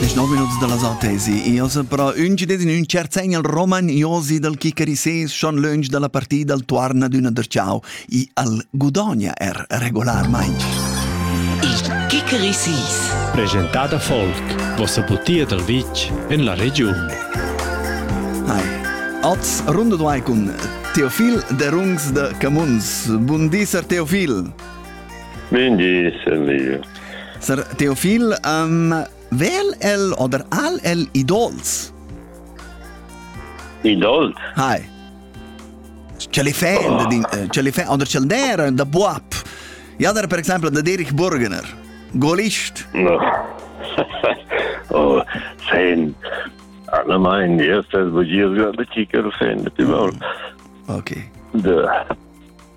Desch nov minuts dalla zatesi. Io sopra ün gides in ün cert segn al Roman Iosi dal Chicarises schon lönch dalla partida al tuarna d'üna der ciao i al Gudonia er regolarmaing. Il Chicarises. Presentada folk. Vossa butia dal vitg en la regiun. Hi. Oz runde duai cun Teofil de Rungs de Camuns. Bun dis, Teofil. Bun dis, Elio. Sir Teofil, um, vel el oder al el idols? Idols? Hai. Ce li fa, oh. ce li fa, oder ce der, da buap. Ja, der per esempio, da Derich Burgener, Golist. No. oh, sein. Allgemein, erstes, wo ich jetzt gerade Kicker-Fan mit dem Maul. Okay. De,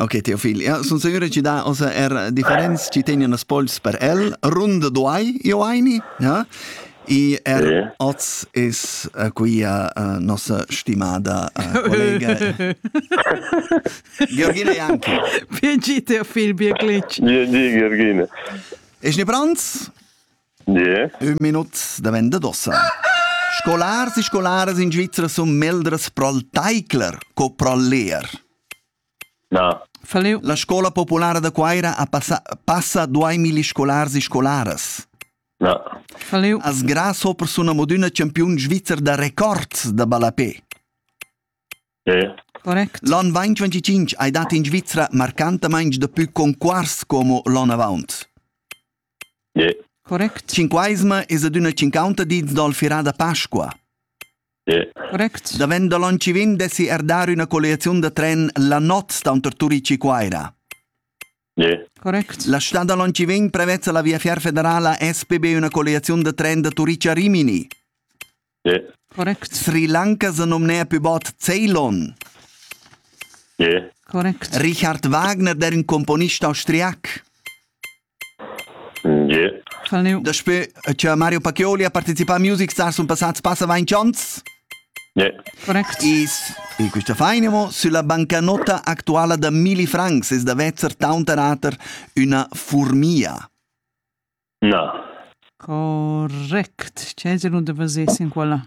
Ok, Teofilia, sun sicur chi dà ossa er differents chi tegnan as pols per el. Runda duai io aini, ja? I er yeah. oz is uh, qui uh, uh, nossa stimada uh, collega Georgina Janki. Biegi Teofil Bierglitsch. Biegi Georgina. Es ne Franz? Yeah. Un minut da venda d'ossa. Scolars e scolaras in Svizzera sun meldras prol taicler co prol leer. La scola populara da Cuaira ha passa, passa duamilli scolars e scolaras. As gra sopra sun amo d'üna champiun svizzer da records da ballapè. L'on 2025 hai dat in Svizra marcantamaing dapü conquars como l'on avaunt. Cinquaisma es ad üna cinquanta dits dal firà da Pasqua. Correct. Davent da Loncivin dessi er dar üna colliaziun da tren la not taunter Turici Cuaira. Correct. La stad da Loncivin prevezza la Viafier federala SPB una colliaziun da tren da Turici a Rimini. Correct. Sri Lanka se nomnea più bot Ceylon. Correct. Richard Wagner, der ein Komponist austriac. Yeah. Daspö cha Mario Pacchioli ha partecipà a Music Stars sun passats passa vainch ans. Yeah. Correct. Is in quista faina mo sulla bancanotta actuala da Milli Francs es da vezzer taunterater üna furmia. No. Correct. C'è se non te facessi in quella?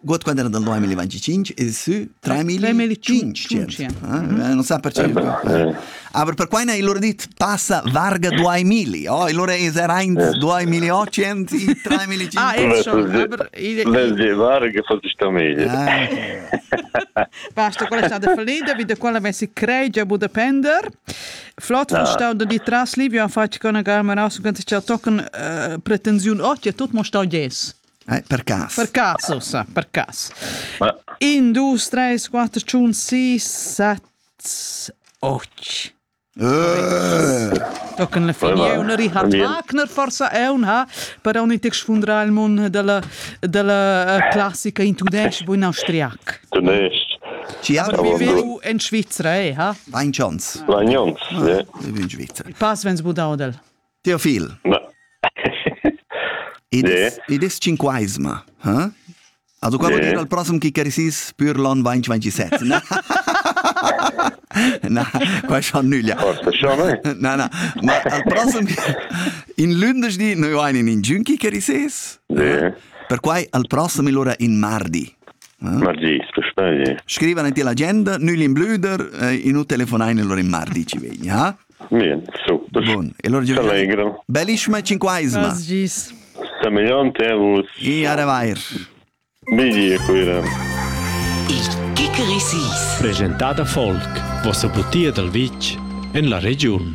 God quando era del 2025 e su 3500 non sa perché aber per quai ne il loro dit passa varga 2000 oh il loro is er 1 2800 3500 ah è schon aber le varga fa sta meglio basta quella sta da finita wie de quella messi crei a Budapender flott von stau de tras livio a facci con a gamera su ganze ciao tocken pretensiun ot ja tot mo stau yes Eh, per cas. Per cas, ossa, per cas. Ma... 1, 2, 3, 4, 5, 6, 7, 8. Tocan la fine una Richard Wagner forsa è un ha però un text fundra il mondo della della eh, classica in tudesc bu in austriac. Tudesc. Ci ha viviu in Svizzera eh ha? Vain chance. Vain chance, ja. In Svizzera. Pass vens budau del. Teofil. Ed es, ed es cinquaisma, ha? Also qua vuol dir al prossem chi cherissis pür l'on 2027, na? na, qua schon nüglia. Forza schon, eh? Na, na, ma al prossem in lündeschdi noi vain in giun chi cherissis. Ja. Perquai al prossem illura in mardi. Mardi, scuspagli. Scrivan ti l'agenda, nügli in blüder, eh, in u telefonain illura in mardi ci vegni, ha? Bien, so. Bon, e allora Allegro. Bellissima cinquaesima. Gis. Semejante vus. E a revair. Meglio quella. Il Kikerisis. Presentata Folk, vossa butia dal vitg en la regiun.